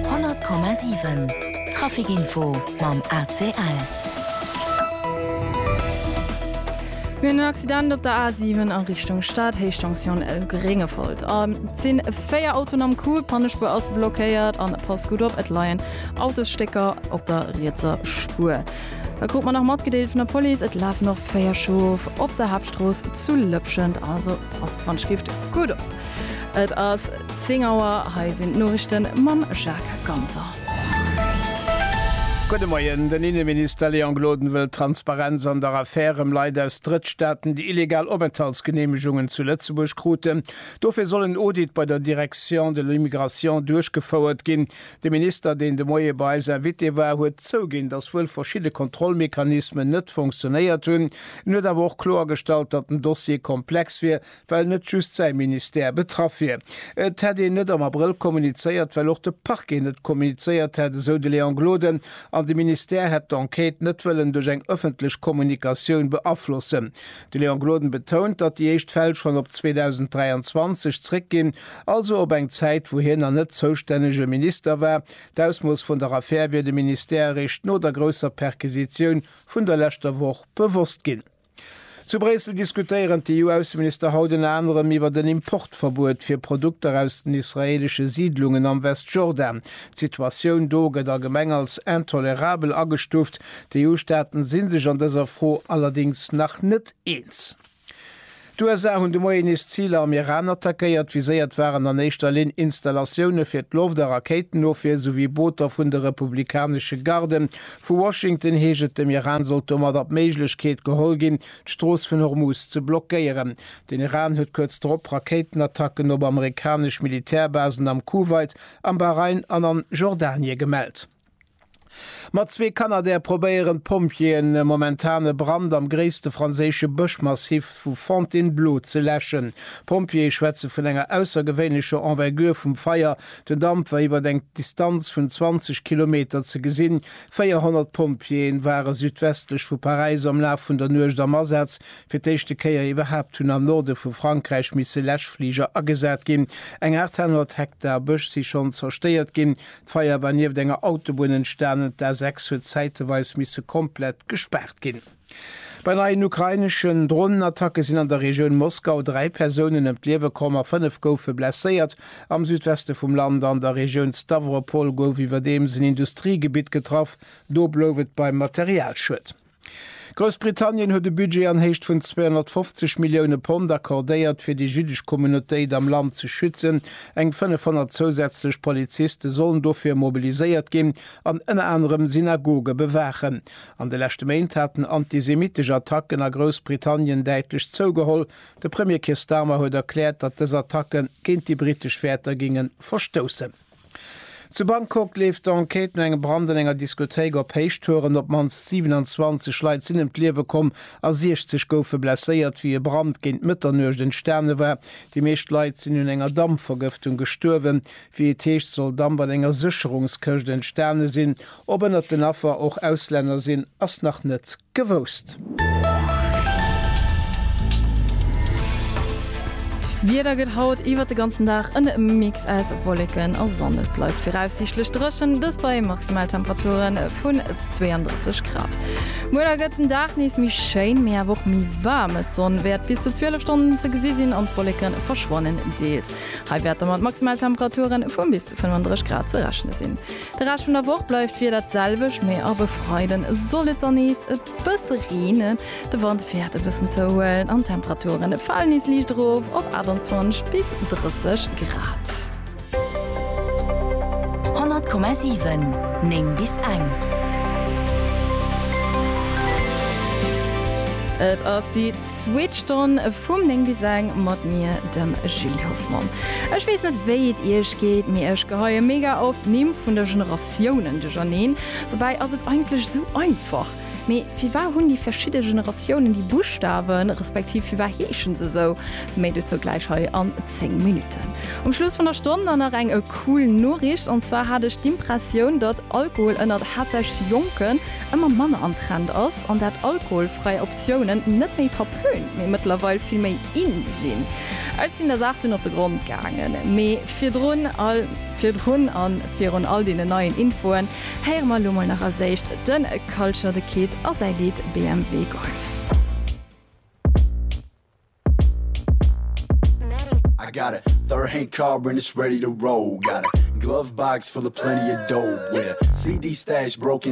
100,7 Traficinfo mam ACL. Mir hunn en Accident op der A7 a Richtung Stad, Héichtensioun Gréngefolt. Et si véier Autoen am Coup, Pannespuer ass blockéiert. An pass gutt op, et leien Autosstécker op der rietser Spuer. Dat krut mer nach matgedeelt vun der Police. Et lafen och véier Chauffe op der Haaptstrooss zu Lëpschent, also passt wann et skift gutt op. Et ass. 10 Auer, hei sinn d'Noriichten mam Jacques Ganser. Gudde Moien. Den Inneminister Léon Gloden wëll Transparenz an der Affär ëm Leit aus Drëttstaaten, déi illegal Openthaltsgeneemegungen zu Lëtzebuerg kruten. Dofir soll en Audit bei der Direction de l'immigration duerchgefouert ginn. De Minister, deen de Moie bei eis Invité war, huet zouginn, datt wuel verschidde Kontrollmechanismen net fonctionéiert hunn. En huet awer och kloergestallt, datt den Dossier komplex wier, well net just säi Ministère betraff wier. Et hätt een net am Abrëll kommunizéiert, well och de Parquet net kommunizéiert hätt, esou de Léon Gloden, an de Ministère hätt d'Enquête net wëllen duerch eng ëffentlech Kommunikatioun beaflossen. De Léon Gloden betount, datt déi éischt Fäll schonn op 2023 zréckginn, also op eng Zäit, wou hien nach net zoustännege Minister war. D'Ausmooss vun der Affär wier dem Ministère eréischt no der grousser Perquisitioun vun der leschter Woch bewosst ginn. Zu Bréissel diskutéieren d'EU-Ausseminister haut ënner anerem iwwert en Importverbuet fir Produkter aus den israeelesche Siidlungen am Westjordan. D'Situatioun do gëtt allgemeng als intolerabel agestuuft. D'EU-Staaten si sech an dëser Fro allerdéngs nach net eens. D'USA hunn de Moien nees Ziler am Iran attackéiert. Viséiert waren an éischter Linn Installatioune fir d'Loft a Rakéitenofwier souwéi Booter vun de republikanesche Garden. Vu Washington heescht et, dem Iran sollt domadder d'Méiglechkeet geholl ginn, d'Strooss vun Hormuz ze blockéieren. Den Iran huet kuerz drop Rakéitenattacken op amerikanesch Militärbasen am Kuwait, am Bahrain an an Jordanie gemellt. Mat zwee Canadair probéieren d'Pompjeeën momentan e Brand am gréisste franséische Bëschmassiv vu Fontainebleau ze läschen. D'Pompjeeë schwätze vun enger aussergewéinlecher Envergure vum Feier, Den Damp war iwwer eng Distanz vun 20 Kilometer ze gesinn. 400 Pompjeeën ware südwestlech vu Paräis am Laf vun der Nuecht am Asaz. Fir d'éischte Kéier iwwerhaapt hunn am Norde vu Frankräich misse Läschfliger agesat ginn. Eng 800 Hektar Bësch si schonn zerstéiert ginn. D'Feier war nieft enger Autobunn entstanen. D'A6 huet zäiteweis misse komplett gespaart ginn. Bei neien ukraineschen Dronenattacke sinn an der Regioun Moskau dräi Persounen ëm d'Liewe komm a fënnef goufe blesséiert. Am Südweste vum Land an der Regioun Stawropol gouf iwwerdeems en Industriegebitt getraff, do blouf et beim Materialschued. Groussbritannien huet e Budget an Héicht vun 250 Millioune Pond accordéiert, fir déi jüddesch Communautéit am Land ze schützen. Eng 500 zousätzlech Poliziste sollen dofir mobiliséiert ginn an ënner anerem Synagoge bewaachen. An de leschte Méint haten antisemittesch Attacken a Groussbritannien däitlech zougeholl. De Premier Keir Starmer huet erkläert, datt dës Attacke géint déi britesch Wäerter géinge verstoussen. Zu Bangkok leeft d'Enquête no engem Brand an enger Diskothéik op Héichtouren. Op d'mannst 27 Leit sinn ëm d'Liewe komm a 60 goufe blesséiert, wéi e Brand géint Mëtternuecht entstane war. Déi meescht Leit sinn un enger Dampvergëftung gestuerwen. Wéi et heescht, soll Damp an enger Sécherungskëscht entstane sinn. Ob ënnert den Affer och Auslänner sinn, ass nach net gewousst. D'Wieder gëtt haut iwwert de ganzen Dag en Mix aus Wolleken a Sonn. Et bleift viraussiichtlech dréchen, dëst bei Maximaltemperature vun 32 Grad. Muer da gëtt den Dag nees méi schéin, mee awer och méi waarm. D'Sonn wäert bis zu 12 Stonnen ze gesi sinn an d'Wolleke verschwannen deels. Hei wäerte mat Maximaltemperature vu bis zu 35 Grad ze rechne sinn. De Rescht vun der Woch bleift d'Wieder d'selwecht, mee ab e Freiden soll et dann nees e bësse reenen. De Wand wäert e bëssen zouhuelen an d'Temperaturen e falen nees liicht erof op 28 bis 30 Grad. 100,7 9 bis eng. Et ass déi. Zweet Stonn vum 9 bis eng mat mir, dem Julie Hoffmann. Ech weess net wéi et iech geet, mee ech geheie mega oft d'Nimm vun de Generatiounen duercherneen. Dobäi ass et eigentlech esou einfach. Mee firwar hunn déi verschidde Generatiounen déi Buschtawen, respektiv firwar heeschen se esou? Méi dozou gläich hei an 10 Minutten. Um Schluss vun der Stonn dann nach eng cool Noriicht, an zwar hat ech d'Impressioun, datt Alkohol ënnert haaptsächlech Jonken ëmmer manner am Trend ass an dat alkoholfräi Optiounen net méi verpönt, mee mëttlerweil vill méi in sinn. Ech sinn der Saach dunn op de Grond gaangen. Mee virdrun all, virdrun an virun all deenen neien Infoen héiere mer elo mol nach als éischt de Culture The Kid a säi Lidd BMW Golf. I got a third hand car and it's ready to roll got a glove box full of plenty of dope yeah CD stash broken